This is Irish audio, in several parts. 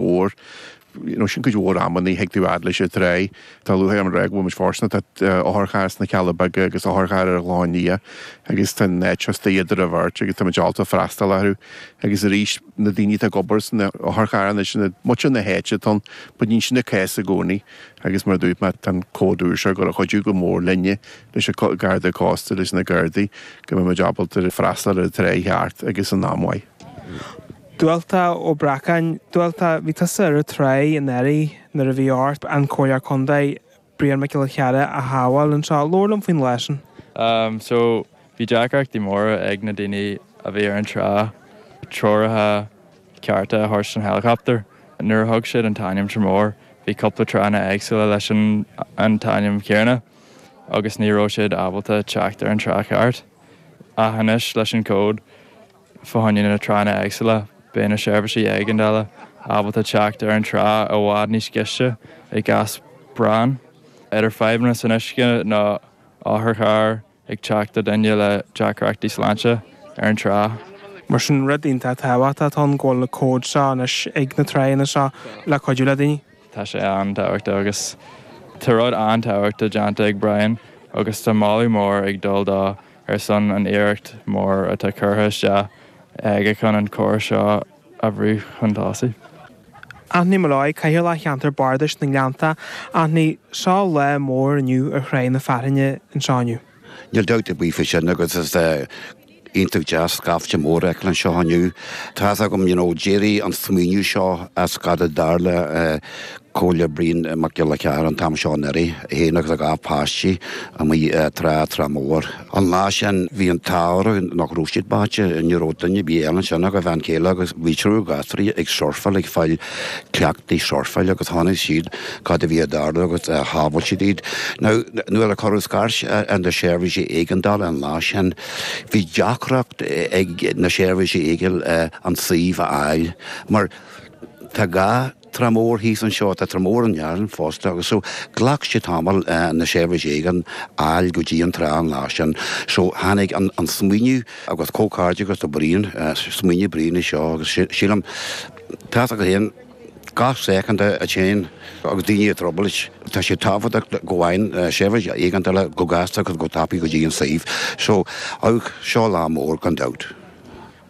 óir níl sin cuid mhór ama ní thig tú a fháil fhad leis an trá. Tá luaite agam réidh go bhfuil muid fóirsteanach, tá otharcharr sna Cealla Beaga agus otharcharr ar Ghleann Fhia agus tá an áit seo is doighe do rabharta agus tá muid ábalta freastal orthu. Agus arís na daoine atá ag obair san otharcharr anois ó mhuintir na háite ann but níl sin an cás i gcónaí agus mar a dúirt mé tá an cód úr seo gur gcuideoidh go mór linne leis an Garda Cósta leis na Gardaí go mbeidh muid ábalta freastal ar an trá cheart agus in am mhaith. Dualta Ó Breacáin, Dualta, bhí tusa ar an trá anuraidh nuair a bhí ort an Comhairleoir Contae, Brian Mac Giolla Chearra a shábháil anseo. Labhair liom faoin lá sin. Am, so, bhí deacrachtaí móra ag na daoine a bhí ar an trá, treoraithe cearta a thabhairt don helicopter. Nuair a thug siad an t-ainm Tramore, bhí cúpla tránna éagsúla leis an an t-ainm chéanna agus ní raibh siad ábalta teacht ar an trá cheart. Ach anois leis an cód. Fá choinne na tránna éagsúla beidh na seirbhísí éigeandála ábalta teacht ar an trá i bhfad níos gaiste i gcás práinne. Idir fadhbanna san uisce nó otharcharr ag teacht do dhuine le deacrachtaí sláinte ar an trá. Mar sin, rud iontach tábhachtach atá ann go bhfuil na cóid seo anois ag na tránna seo le cuidiú le daoine. Tá sé an-tábhachtach agus tá rud an-tábhachtach déanta ag Brian agus tá moladh mór ag dul dó ar son an iarracht mór atá curtha isteach aige chun an córas seo a bhrú chun tosaigh. Anthony Molloy, Cathaoirleach Cheantar Bardais na nGleannta. Anthony, seo lá mór inniu ar Thráigh na Fearthainne anseo inniu. Níl dabht ar bith faoi sin agus is iontach deas scaifte mór a fheiceáil anseo inniu. Tá a fhios agam, you know, d'éirigh an smaoineamh seo as cad a tharla eh, comhairleoir Brian Mac Giolla Chearra an t-am seo anuraidh, é féin agus a dhá pháistí amuigh ar trá Trá Mhór. An lá sin bhí an t-ádh orthu nach raibh siad báite, ní raibh duine ar bith eile ansin ach a bhean chéile agus bhí triúr gasúirí ag surfáil, ag fáil cleachtaí surfáil agus chonaic siad cad a bhí ag tarlú agus shábháil siad iad. Now nuair a cuireadh scairt ar na seirbhísí éigeandála an lá sin bhí deacracht ag na seirbhísí éigeandála an suíomh a fháil mar tá gá, Trá Mhór thíos anseo, tá Trá Mhór i nDún Fionnachaidh fosta agus so ghlac sé tamall na seirbhísí éigeandála a fháil go dtí an trá an lá sin so tháinig an an smaoineamh agus comhghairdeas do Brian smaoineamh Brian é seo agus sílim tá a fhios agat féin gach soicind a téann agus daoine i dtrioblóid tá sé tábhachtach go bhfaigheann seirbhísí éigeandála go gasta agus go tapaidh go dtí an suíomh so seo lá mór gan dabht.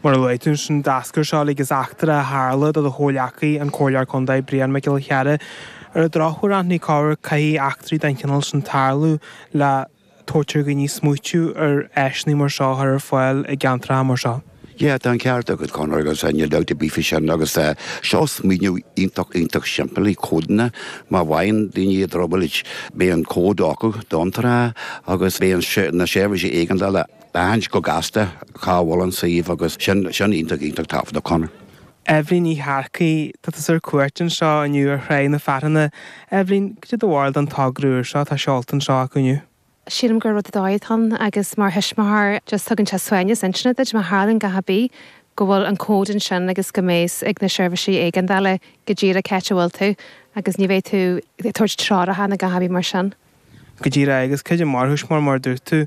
Mar a luaigh tú ansin, d'eascair seo uilig as eachtra a tharla do do chomhleacaí, an Comhairleoir Contae, Brian Mac Giolla Chearra. Ar an drochuair, aithníodh cabhair, caithfidh eachtraí den chineál sin tarlú le tabhairt ar dhaoine smaoitiú ar áiseanna mar seo a chur ar fáil i gceantracha mar seo. Yeah, tá an ceart agat, Conor, agus níl dabht ar bith faoi sin, agus seo smaoineamh iontach, iontach simplí, códanna, má bhfaigheann daoine i dtrioblóid, beidh an cód acu don trá agus beidh an, na seirbhísí éigeandála aithint go gasta cá bhfuil an suíomh agus sin, sin iontach, iontach tábhachtach, Conor. Eibhlín Ní Shearcaigh, tá tusa ar cuairt anseo inniu ar Thráigh na Fearthainne. Eibhlín, cad é do bharúil den togra úr seo, tá seolta anseo acu inniu. Sílim gur rud ar dóigh atá ann agus mar thuismitheoir just tugann sé suaimhneas intinne duit má tharlaíonn a dhath ar bith go bhfuil an cód ansin agus go mbeidh a fhios ag na seirbhísí éigeandála go díreach cá háit a bhfuil tú agus ní bheidh tú ag tabhairt treoracha nó a dhath ar bith mar sin. Go díreach agus go díreach mar thuismitheoir mar a dúirt tú,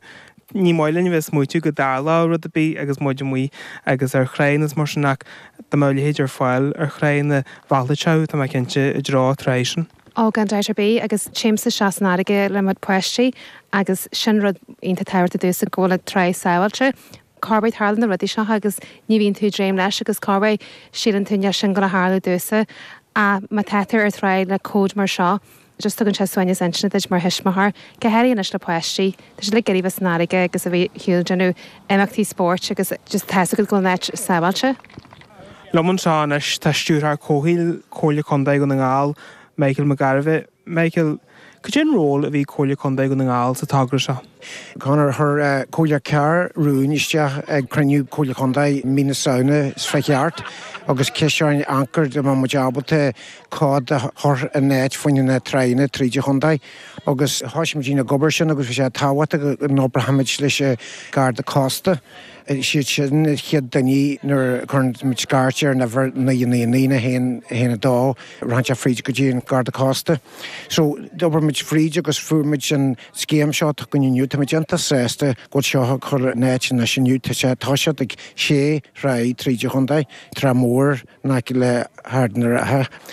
ní maith linn a bheith ag smaoitiú go dtarlóidh rud ar bith agus muid amuigh agus ar thráigh nó mar sin ach dá mbeadh a leithéid ar fáil ar thráigh mheallfadh sé thú tá mé cinnte, i dtreo trá é sin. Ó, gan dabht ar bith agus téimse isteach san fharraige le mo pháistí agus sin rud iontach tábhachtach domhsa go bhfuil an trá sábháilte, 'cause tarlaíonn na rudaí seo agus ní bhíonn tú ag dréim leis agus cá bith síleann tú nach bhfuil sin ag gabháil a tharlú duitse ach má tá tú ar trá le cód mar seo, just tugann sé suaimhneas intinne duit mar thuismitheoir, go háirithe anois le páistí, tá siad like ag iarraidh a bheith san fharraige agus a bheith ar shiúl ag déanamh imeachtaí spóirt agus just tá's agat go bhfuil an áit sábháilte. Liom anseo anois tá Stiúrthóir Comhshaoil Chomhairle Contae Dhún na nGall, Michael Mac Gairbheith. Michael, cad é an ról a bhí ag Comhairle Contae Dhún na nGall sa togra seo? Conor chuir an Comhairleoir Carr rún isteach ag cruinniú Comhairle Contae mí na Samhna. Is fé cheart agus ciseáin ancair dá mbeadh muid ábalta cód a chur in áit fá choinne na tráigheanna tríd an chontae agus thoisigh muid ag obair ar sin agus bhí sé tábhachtach go n-oibreodh muid leis an Garda Cósta. Siad sin na chéad duine nuair a chuireann muid scairt ar an uimhir 999 nó 112 rachaidh sé fríd go dtí an Garda Cósta. So d'oibir muid fríd agus fuair muid an. scéim seo go dtí inniu. Táimid iontach sásta go bhfuil seo á chur in áit anois inniu. Tá sé tá siad ag sé thráigh tríd an chontae, Trá Mhór in aice le hArd an Rátha,